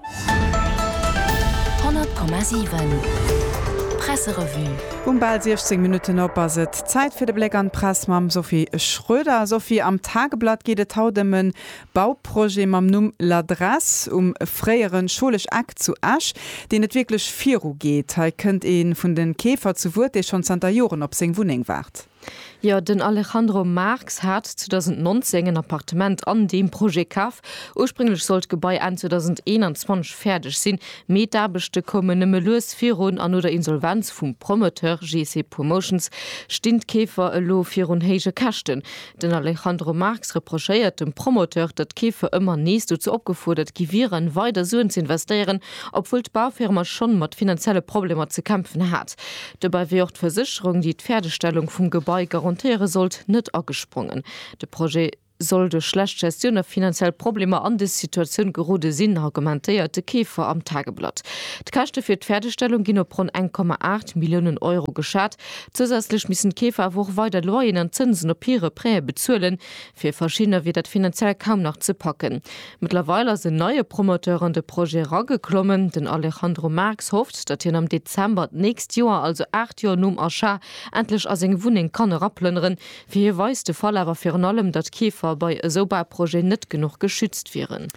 100,7 Presserevue Um bal 16 Minutten op ass et Zäit fir de Bléck an d'Press mam Sophie Schroeder. Sophie, am Tageblatt geet et haut ëm e Bauprojet mam Numm L'Adresse um fréiere Scholesch Eck zu Esch, deen net wierklech virugeet. Hei kënnt ee vun de Keefer zu Wuert, dee schonn zanter Joren op seng Wunneng waart. Jo, den Alejandro Marx hat 2019 en Appartement an deem Projet kaf. Ursprénglech sollt d'Gebai Enn 2021 fäerdeg sinn, mee d'Aarbechte koumen nëmme lues virun an no der Insolvenz vum Promoteur GC Promotions stinn d'Keefer elo virun héije Käschten. Den Alejandro Marx reprochéiert dem Promoteur, datt d'Keefer ëmmer nees dozou opgefuerdert gi wieren, weider Suen ze investéieren, obwuel d'Baufirma schonn mat finanzielle Problemer ze kämpfen hat. Dobäi wier och d'Versécherung, déi d'Fäerdegstellung vum Gebai garantéiere sollt, net agesprongen. De Projet soll duerch schlecht Gestioun a finanziell Problemer an dës Situatioun gerode sinn, argumentéiert de Keefer am Tageblatt. D'Käschte fir d'Fäerdegstellung ginn op ronn eng Komma aacht Milliounen Euro geschat. Zousätzlech missen d'Keefer awer och weider Loyeren an Zënsen op hire Prêtë bezuelen. Fir verschiddener wier dat finanziell kaum nach ze packen. Mëttlerweil ass en neie Promoteur an de Projet erageklommen. Den Alejandro Marx hofft, datt hien am Dezember d'nächst Joer, also 8 Joer nom Achat, endlech a seng Wunneng kann eraplënneren. Fir hie weist de Fall awer virun allem, datt Keefer bei esou Bauprojeten net genuch geschützt wieren.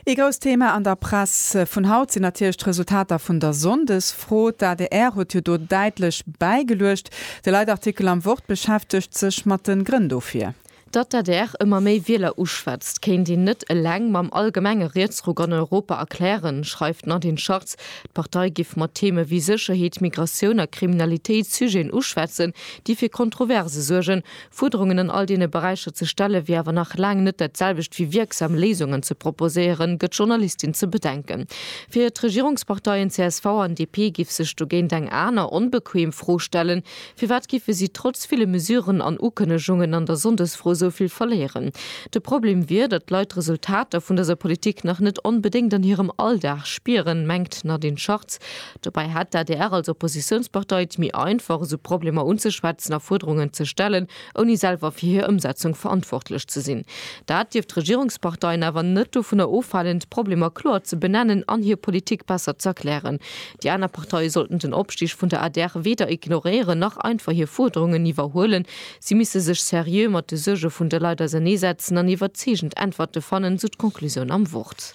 Ee grousst Thema an der Press vun haut sinn natierlech d'Resultater vun der Sonndesfro. D'adr huet jo do däitlech bäigeluecht. De Leitartikel am Wort beschäftegt sech mat de Grënn dofir. Datt d'ADR ëmmer méi Wieler uschwätzt, kéint een net eleng mam allgemenge Rietsruck an Europa erklären, schreift d'Nadine Schartz. D'Partei giff mat Theme wéi Sécherheet, Migratioun a Kriminalitéit Sujeten uschwätzen, déi fir Kontroverse suergen. Fuerderungen an all deene Beräicher ze stelle wier awer nach laang net dat selwecht wéi wierksam Léisungen ze proposéieren, gëtt d'Journalistin ze bedenken. Fir d'Regierungsparteien csv an DP giff sech dogéint eng aner, onbequem Fro stellen, Firwat giffe si trotz ville Mesuren an Ukënnegungen an der Sonndesfro esou vill verléieren? De Problem wier, datt d'Leit d'Resultater vun dëser Politik nach net onbedéngt an hirem Alldag spieren, mengt d'Nadine Schartz. Dobäi hätt d'ADR als Oppositiounspartei et méi einfach, esou Problemer unzeschwätzen a Fuerderungen ze stellen, ouni selwer fir hir Ëmsetzung verantwortlech ze sinn. Dat dierft d'Regierungsparteien awer net dovunner ofhalen, d'Problemer kloer ze benennen an hir Politik besser ze erklären. Déi aner Parteie sollten den Opstig vun der adr weder ignoréieren, nach einfach hir Fuerderungen iwwerhuelen. Si misste sech seriö mat de Suerge vun de Leit auserneesetzen an iwwerzeegend Äntwerte fannen, sou d'Conclusioun am Wort.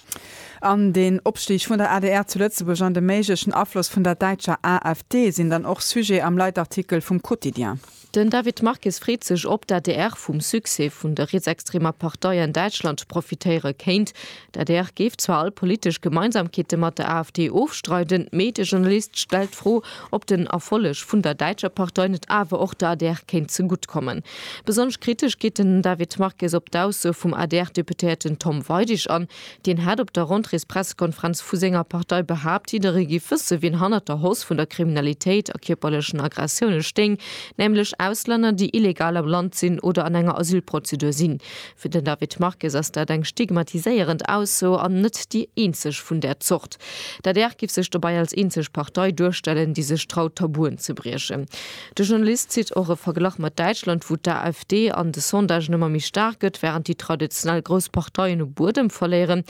An den Opstig vun der adr zu Lëtzebuerg an de méiglechen Afloss vun der däitscher AfD sinn dann och Sujet am Leitartikel vum Quotidien. Den David Marques freet sech, ob d'ADR vum Succès vun der rietsextremer Partei an Däitschland profitéiere kéint. D'ADR géif zwar all politesch Gemeinsamkeete mat der AfD ofstreiden, mee de Journalist stellt d'Fro, ob den Erfolleg vun der däitscher Partei net awer och der adr kéint zegutt kommen. Besonnesch kritesch geet den David Marques op d'Ausso vum ADR-Deputéierten Tom Weidig an. Deen hat op der Rentréespressekonferenz vu senger Partei behaapt, jidderee géif wësse wien hannert der Hausse vun der Kriminalitéit a kierperlechen Aggressioune stéing, nämlech Auslänner, déi illegal am Land sinn oder an enger Asylprozedur sinn. Fir den David Marques ass dat eng stigmatiséierend Ausso an net déi eenzeg vun där Zort. D'adr géif sech dobäi als eenzeg Partei duerstellen, déi sech traut Tabuen ze briechen. De Journalist zitt och e Verglach mat Däitschland, wou d'AfD an de Sondagen ëmmer méi staark gëtt, wärend déi traditionell grouss Parteien u Buedem verléieren.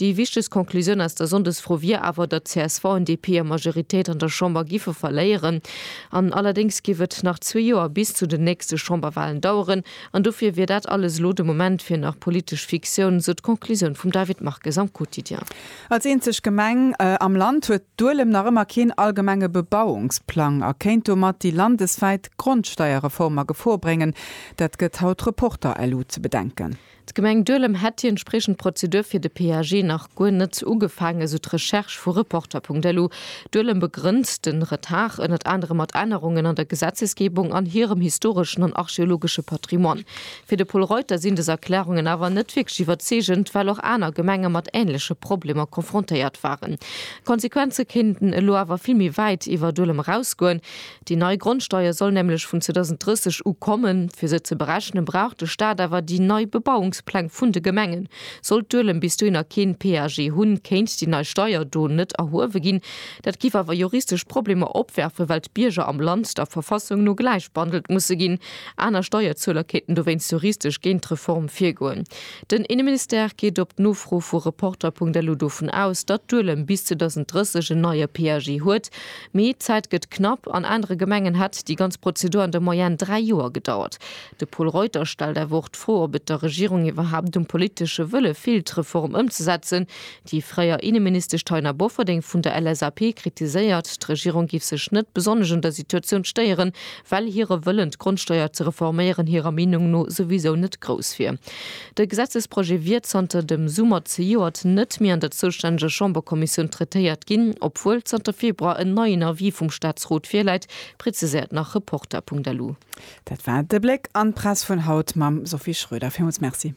Déi wichtegst Conclusioun aus der Sonndesfro wier awer, datt csv an DP hir Majoritéit an der Chamber giffe verléieren. An allerdéngs giff et nach zwee Joer bis zu den nächste Chamberwalen daueren. An dofir wier dat alles elo de Moment fir nach politesch Fiktioun, sou d'Conclusioun vum David Marques am Quotidien. Als eenzeg Gemeng am Land huet Duelem nach ëmmer keen allgemenge Bebauungsplang a kéint domat déi landeswäit Grondsteierreform a Gefor bréngen. Dat gëtt haut Reporter LU ze bedenken. D'Gemeng Duelem hätt déi entspriechend Prozedur fir de PAG nach guer net ugefaangen, esou d'Recherche vu Reporter.lu. Duelem begrënnt de Retard ënnert anerem mat Ännerungen an der Gesetzesgebung an hirem historeschen an archeologesche Patrimoine. Fir de Pol Reuter sinn des Erklärungen awer net wierklech iwwerzeegend, well och aner Gemenge mat änleche Problemer konfrontéiert waren. D'Konsequenze kéinten elo awer vill méi wäit iwwer Duelem erausgoen. Déi nei Grondsteier soll nämlech vun 2030 u kommen. Fir se ze berechnen, brauch de Staat awer déi nei Bebauungspläng vun de Gemengen. Sollt Duelem bis dohi nach keen PAG hunn, kéint déi nei Steier do net erhuewe ginn. Dat géif awer juristesch Problemer opwerfen, well d'Bierger am Land der Verfassung no gläich behandelt musse ginn. aner Steierzueler kéinten dowéinst juristesch géint d'Reform virgoen. Den Inneministère geet op d'Nofro vu Reporter.lu dovun aus, datt Duelem bis 2030 en neie PAG huet. Mee d'Zäit gëtt knapp, an anere Gemengen hätt déi ganz Prozedur an der Moyenne dräi Joer gedauert. De Pol Reuter stellt awer och d'Fro, ob et der Regierung iwwerhaapt um politesche Wëlle feelt d'Reform ëmzesetzen, Déi fréier Inneministesch Taina Bofferding vun der LSAP kritiséiert, d'Regierung géif sech net besonnesch un der Situatioun stéieren, well hire Wëllen d'Grondsteier ze reforméieren hirer Meenung no souwisou net grouss wier. De Gesetzesprojet wier zanter dem Summer zejoert net méi an der zoustänneger Chamberkommissioun traitéiert ginn, obwuel zanter Februar en neien Avis vum Staatsrot virläit, preziséiert nach Reporter.lu. Dat war de Bléck an d'Press vun haut mam Sophie Schröder. Villmools Merci.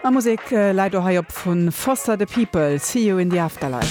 A Musek läit och hei op vun Foster the People, See You in the Afterlife.